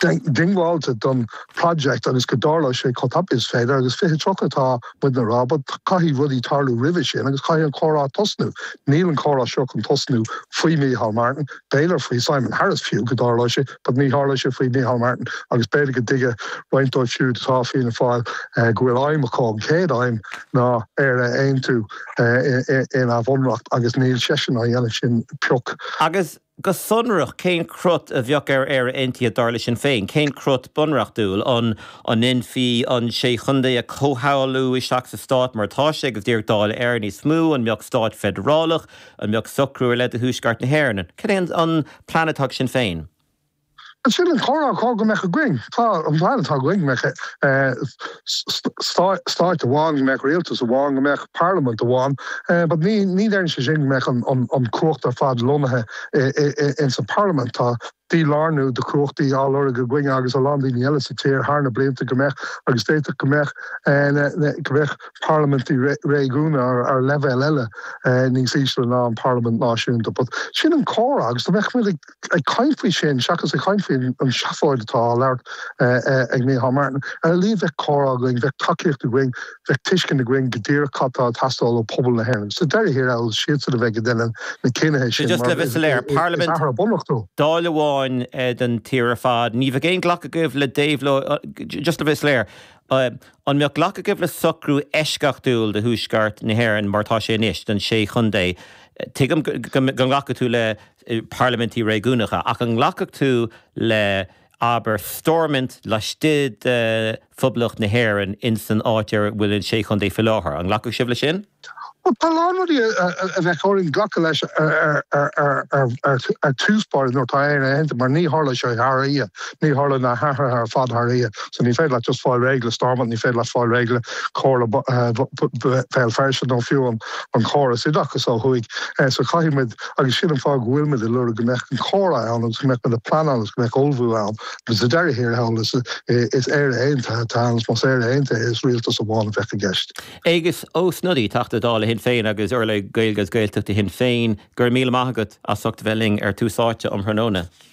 diongbháilte don project agus go dtarlóidh sé chomh tapaidh is féidir agus fiche tríocha tá muid ag rá but caithfidh rudaí tarlú roimhe sin agus caithfidh an comhrá tosnú. Níl an comhrá seo chun tosnú faoi Micheál Martin, b'fhéidir faoi Simon Harris fiú go dtarlódh sé but ní tharlóidh sé faoi Micheál Martin agus b'fhéidir go dtuigfidh roinnt dóibh siúd atá i bhFianna Fáil go bhfuil aidhm acu, an chéad aidhm ná Éire a aontú ina mbunreacht agus níl seisean á dhéanamh sin pioc. Agus Go sonrach, cén crut a bheadh ar Éire Aontaithe dar le Sinn Féin? Cén crut bunreachtúil? An ndéanfaí an Sé Chontae a chomhshamhlú isteach sa stát mar atá sé agus díreach Dáil Éireann níos mó? An mbeadh stát feidearálach? An mbeadh socrú ar leith do Thuaisceart na hÉireann? Cad é an plean atá ag Sinn Féin? Sin an comhrá is gá go mbeadh againn. Tá an plean atá againn go mbeadh stát amháin, go mbeadh rialtas amháin, go mbeadh parlaimint amháin, but ní deireann sé sin go mbeadh an cumhacht ar fad lonnaithe ins an bparlaimint. Tá dí-lárnú de chumhachtaí á lorg againn agus a lán daoine eile sa tír thar na blianta go mbeadh agus d'fhéadfadh go mbeadh go mbeadh parlaimintí réigiúna ar leibhéal eile níos ísle ná an bparlaimint náisiúnta but sin an comhrá agus go mbeadh muid ag ag caint faoi sin seachas ag caint faoi an seafóid atá á labhairt ag Micheál Martin. Ar a laghad bheadh comhrá againn, bheadh tacaíocht againn, bheadh tuiscint againn go díreach cad tá ag teastáil ó phobal na hÉireann. Sa deireadh thiar thall is siadsan a bheidh ag déanamh na cinnithe. Le bheith soiléir, parlaimint amháin,. Dáil amháin don tír ar fad. Ní bheadh aon ghlacadh agaibh le déabhlóid, just le bheith soiléir, an mbeadh glacadh agaibh le socrú eisceachtúil do Thuaisceart na hÉireann mar atá sé anois, don sé chontae? Tuigim go nglacfadh tú le parlaimintí réigiúnacha, ach an nglacfadh tú le, abair, Stormont laistigh de Phoblacht na hÉireann ins an áit a bhfuil an Sé Chontae faoi láthair? An nglacfadh sibh leis sin? Bhuel, tá a lán rudaí a bheadh orainn glacadh leis i dtús báire nuair atá Éire Aontaithe, mar ní tharlóidh sé thar oíche, ní tharlóidh na hathruithe ar fad thar oíche. So ní féidir leat just fáil réidh le Stormont, ní féidir leat fáil réidh le Comhairle Bhéal Feirste nó fiú an córas oideachais ó thuaidh. So caithfidh muid. agus sin an fáth go bhfuil muid ag lorg go mbeadh an comhrá ann agus go mbeadh muid ag pleanáil agus go mbeadh ullmhú ann, but sa deireadh thiar thall is Éire Aontaithe atá ann, agus más Éire Aontaithe is rialtas amháin a bheadh i gceist. Aengus Ó Snodaigh, Teachta Dála Shinn Féin agus urlabhraí Gaeilge agus Gaeltachta Shinn Féin, go raibh míle maith agat as ucht bheith linn ar Tús Áite um thráthnóna.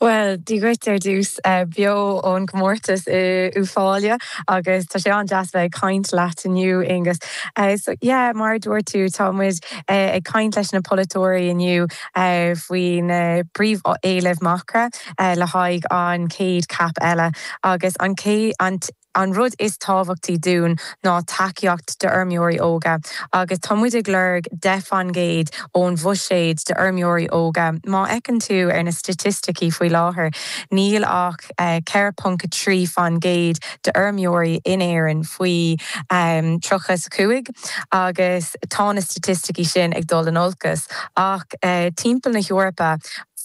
Bhuel, dia dhuit ar dtús. Beo ón gcomórtas in Uíbh Fhailí agus tá sé an-deas bheith ag caint leat inniu, Aonghuis. So, yeah, mar a dúirt tú, tá muid ag caint leis na polaiteoirí inniu faoi na príomhéilimh Macra le haghaidh an chéad CAP eile agus an An rud is tábhachtaí dúinn ná tacaíocht d'fheirmeoirí óga agus tá muid ag lorg deich faoin gcéad ón bhuiséad d'fheirmeoirí óga. Má fheiceann tú ar na staitisticí faoi láthair, níl ach 4.3 faoin gcéad d'fheirmeoirí in Éirinn faoi 30 's 5 agus tá na staitisticí sin ag dul in olcas ach timpeall na hEorpa.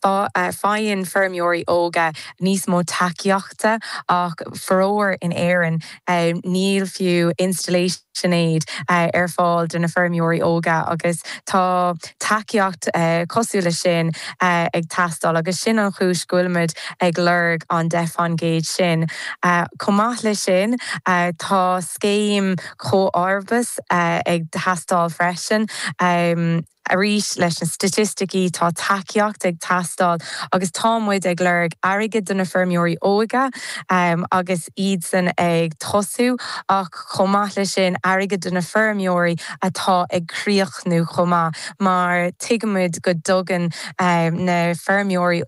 Faigheann feirmeoirí óga níos mó tacaíochta ach faraor in Éirinn níl fiú 'installation aid' ar fáil do na feirmeoirí óga agus tá tacaíocht cosúil leis sin ag teastáil agus sin an chúis go bhfuilimid ag lorg an 10 faoin gcéad sin. Chomh maith leis sin tá scéim comharbais ag teastáil freisin. Arís, leis na staitisticí, tá tacaíocht ag teastáil agus tá muid ag lorg airgead do na feirmeoirí óga agus iadsan ag tosú ach chomh maith leis sin, airgead do na feirmeoirí atá ag críochnú chomh maith mar tuigimid go dtugann na feirmeoirí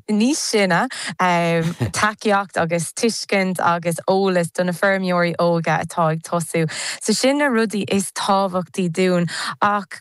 níos sine tacaíocht agus tuiscint agus eolas do na feirmeoirí óga atá ag tosú. So sin na rudaí is tábhachtaí dúinn ach.